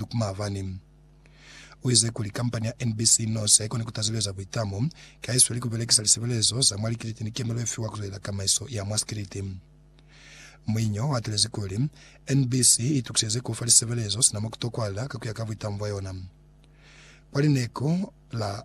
Luke Maavani uize kuli kampani ya NBC News haikoni kutazuleza buitamo ki haisweli kubelekisa lisebelezo za mwa likiliti ni kemelo yefiwa kuzwelela tamaiso ya mwa sikiliti. Muinyi o atelezi kuli, NBC itukiseze kufa lisebelezo sina mokutokwahala kakuya ka buitamo bwayona. Kwa lineko la.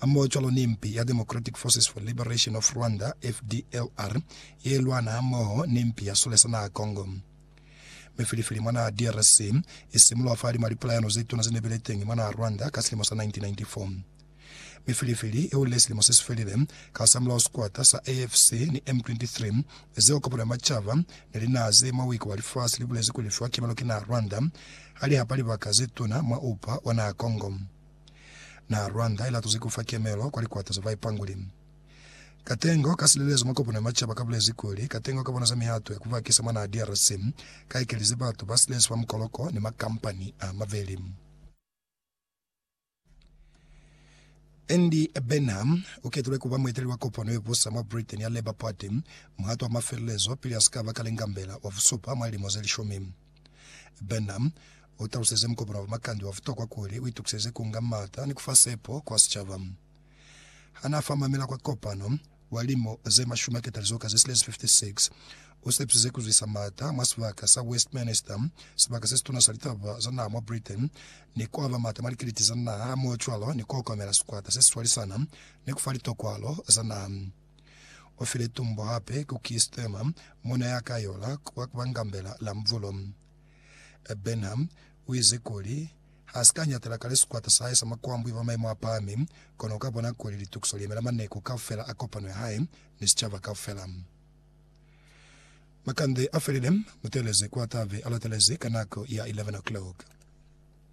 hamoho cwalo ni mpi ya Democratic Forces for Liberation of Rwanda, FDLR, ye lwana hamoho ni mpi ya sule sa naha Congo. Mi filifili mwa naha DRC i simuluha fa lima lipulayano ze tuna ze ne bile teñi mwa naha Rwanda ka silimo sa 1994. Mi filifili i hulile silimo se si felile ka hasamulaho sikwata sa AFC ni M23 zeo kopano ya macaba ni linaha ze mwa buiko bwa lifasi li bulezi kuli li fiwa kimelo ki naha Rwanda ha li hapa libaka ze tuna mwa upa wa naha Congo. Naha Rwanda ilatuzi kufa kemelo kwa likwata za baipanguli. Katengo ka silelezo mwa kopano ya macaba kabulezi kuli, katengo ka bona za mihato ya kubakisa mwa naha DRC ka ekelize batu ba silelezwa fa mukoloko ni makampani a maveli. Andy Burnham uketulwe kuba mueteleli wa kopano yebusa mwa Britain ya Labour Party muhato wa mafelelezo pili asikaba Kalengambela wa busupa mwa lilimo zelishumi. Branham u taluseze mukopano wa makande wa butokwa kuli u itukiseze ku nga m'ata ni ku fa sepo kwa sicaba. Ha n'a fa mamela kwa kopano, wa limu ze mashumi a ketalizo ka ze silezi 56, u sepisize ku zwisa m'ata mwa sibaka sa Westminster, sibaka se situna sa litaba za naha mwa Britain, ni ku aba m'ata mwa likiliti za naha hamoho cwalo ni ku okomela sikwata se si swalisana ni ku fa litokwalo za naha. O file tumbo hape ku Keir Starmer, muuna ya ka yola kwa kubangambela la mubulo. Burnham uize kuli, Ha si ka nyatela kale sikwata sa hae sa makwambu iba maimo a pahami, kono uka bona kuli litukiso li yemela maneko kaufela a kopano ya hae ni sicaba kaufela. Makande a felile, muteeleze kwa ta be a latelezi ka nako ya 11 o'clock.